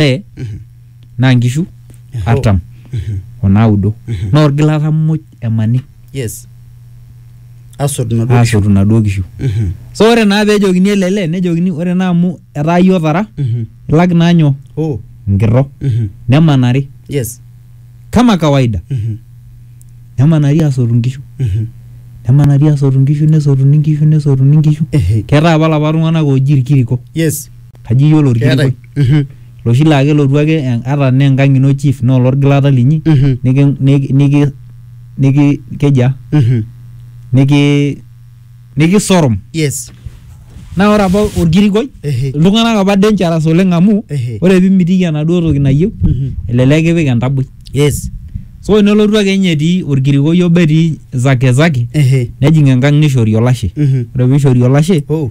naye naa nkishu artam o naudo naa orgilata muj emani yes asot naduo kishu. aasotu naduo kishu Mhm. so ore naa peejokini ele lee nejokini ore naa amu etaa iyie otara Mhm. ilak naa nyoo oh nkirro Mhm. nemanari yes kama kawaida Mhm. nemanari aasotu nkishu Mhm. nemanari aasotu nkishu nesotuni nkishu nesotuni nkishu ehe ketaa apa lapa tung'anak ooji irkiriko yes kaji iyiolo Keetae. orkilikuai Mhm. loshi laa kelotu ake en- ata naa enkang ino chief naa olorgilata linyi Mhm. niki niki niki niki keji aa Mhm. niki nikisorom Yes. naa ore apa orkilikuai Ehe. iltung'anak apa dangerous oleng amu Ehe. ore pimitiki enaduo toki nayieu Mhm. elelek kipik entaboi Yes. so nelotu ake ninye etii orkilikuai obo etii zake zake Ehe. nejing enkang nishori olashe Mhm. ore piishori olashe Oh.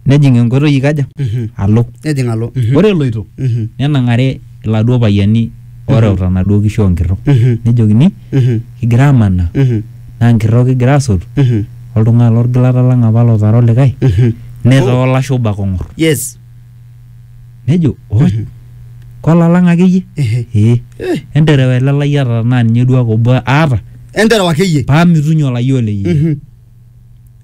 nejing enkoitoi ikaja Mhm. alo Nejing alo. Mhm. ore eloito Mhm. nenang'are iladuo payiani oreuta naduo kishu onkirro Mhm. nejokini Mhm. kigira amanaa Mhm. naa nkirro kigira asotu Mhm. oltung'ani lorgilata lang apa lotara olikae Mhm. netaa olashe obo ake ong'or Yes. nejo "Oi, Mhm. kolalang akeyie Ehe. ee Eh. enterewa ele lai aata naa ninye duake obo aata Enterewa akeyie. paa mitunye olayiolo leyie Mhm.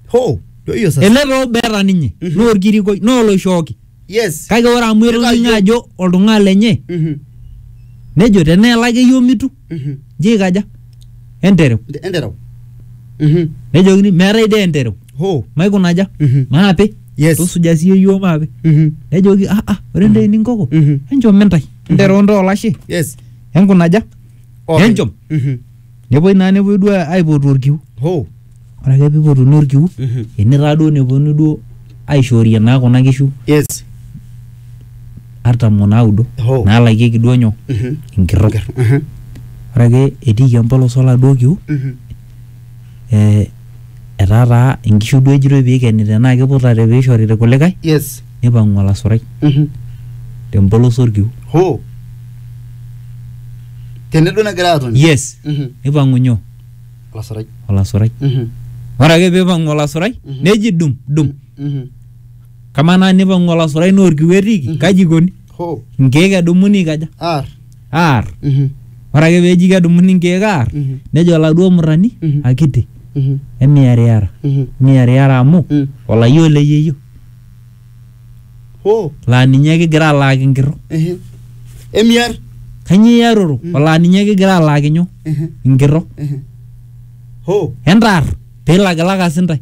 ho ndio hiyo sasa ele too beeta ninye Mhm. naa orkirikoi naa oloishooki yes kake ore amu Kitayu. etoningo ajo oltung'ani lenye Mhm, nejo teneelaki iyie omitu mhm. nji aikaja entereu Ente- enterau Mhm, nejokini meetae dee entereu ho maikunaja Mhm. maape Yes. tusuja siiyie iyiook maape Mhm, nejoki ah ah ore ndee ninkoko Mhm. enchom intae entereu ntae olashe yes enkunaja Openy. enchom Mhm. Nepuoi naa nepuoi duo aipotu orkiu. Hoo. Ore ake peipotuni orkiu ene taa duo nepuonu duo aishoorie naa kuna kishu Yes. artam o naudo Hoo. naalakieki duo nyoo? Enkirro. Enkirro. Ore ake etiiki empolos oladuo kiu eh etaa taa inkishu duo ejitoi piikeni tenaa kiputate piishori irkulikae yes nipang'u olasurai Mhm. tempolos orkiu hoo tene duo negira atoni yes Mhm. nipang'u nyoo olasurai olasurai Mhm. ore ake piipang'u olasurai Mhm. neji dum dum Mhm. kamaa naa nipang'u olasurai naa orkiu etiiki Mhm. kaji ikoni hoo inkeek edumuni aikaja aar aar Mhm. ore ake peji kedumuni nkeek aar Mhm. nejo oladuo murrani Mhm. akiti Mhm. emiariara Mhm. miariara amu Mm. olayioo le yeyio Hoo. laa ninye kigira alaaki nkirro Ehe. Emiar. kanyio iaroro Mm. olaa ninye kigira alaaki nyoo Ehe. nkirro Ehe. Hoo. entaar piilakilaka sintae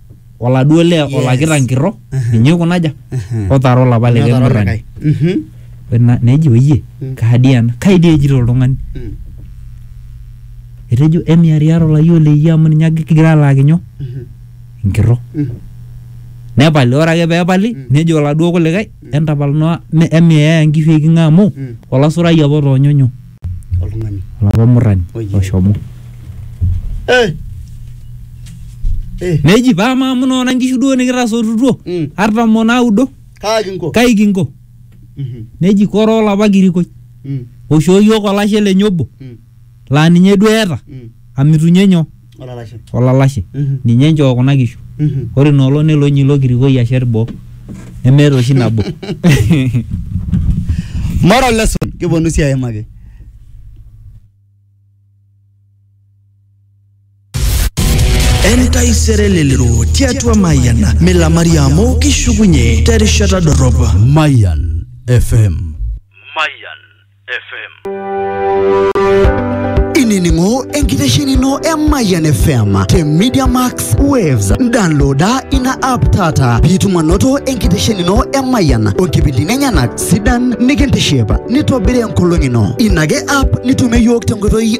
oladuo lee Yes. olakita nkirro Mhm. ninye oikunaja Mhm. otaara olapa Ninye likae otaara murrani olikae. Mhm. Ore na- nejo oyie Mm. kaadi ena kai dii ejito oltung'ani Mm. etejo emiariara olayioo leyie amu ninye ake kigira alaaki nyoo Mhm. nkirro Mhm. nepali ore ake peepali Mm. nejo oladuo kulikae entapal noa emiaya nkishu eking'a amu Mm. olasurai apa otoonyo nyoo oltung'ani olapa murrani Oye. oshomo eh eh neji paa maamu noona nkishu duo nikitasotutuo Mm. artam onaudo kaa kinko kai kinko Mhm, neji koroo olapa kirikoi mm, oishoo yiok olashe lenye obo mm, laa ninye duo eeta mm. amitunye nyoo olalashe, ninye enchoo kuna kishu. Ore ina olong nelo ninye ilo kirikoi ashet boo nemeeta oshi nabo. Moral lesson kiponu sii aimaki. Entaisere elelero tiatua Mayian milamari amu kishukunye terishata dorrop. Mayan FM. Mayan. FM. ininingo enkitesheni ino e Mayian FM te Media Max Waves. Downloada ina app taata piitum anoto enkitesheni ino e Mayian onkipindini enyenak sidan nikintiship nitobiri enkolong ino. Ina ake app nitumie iyiook tenkoitoi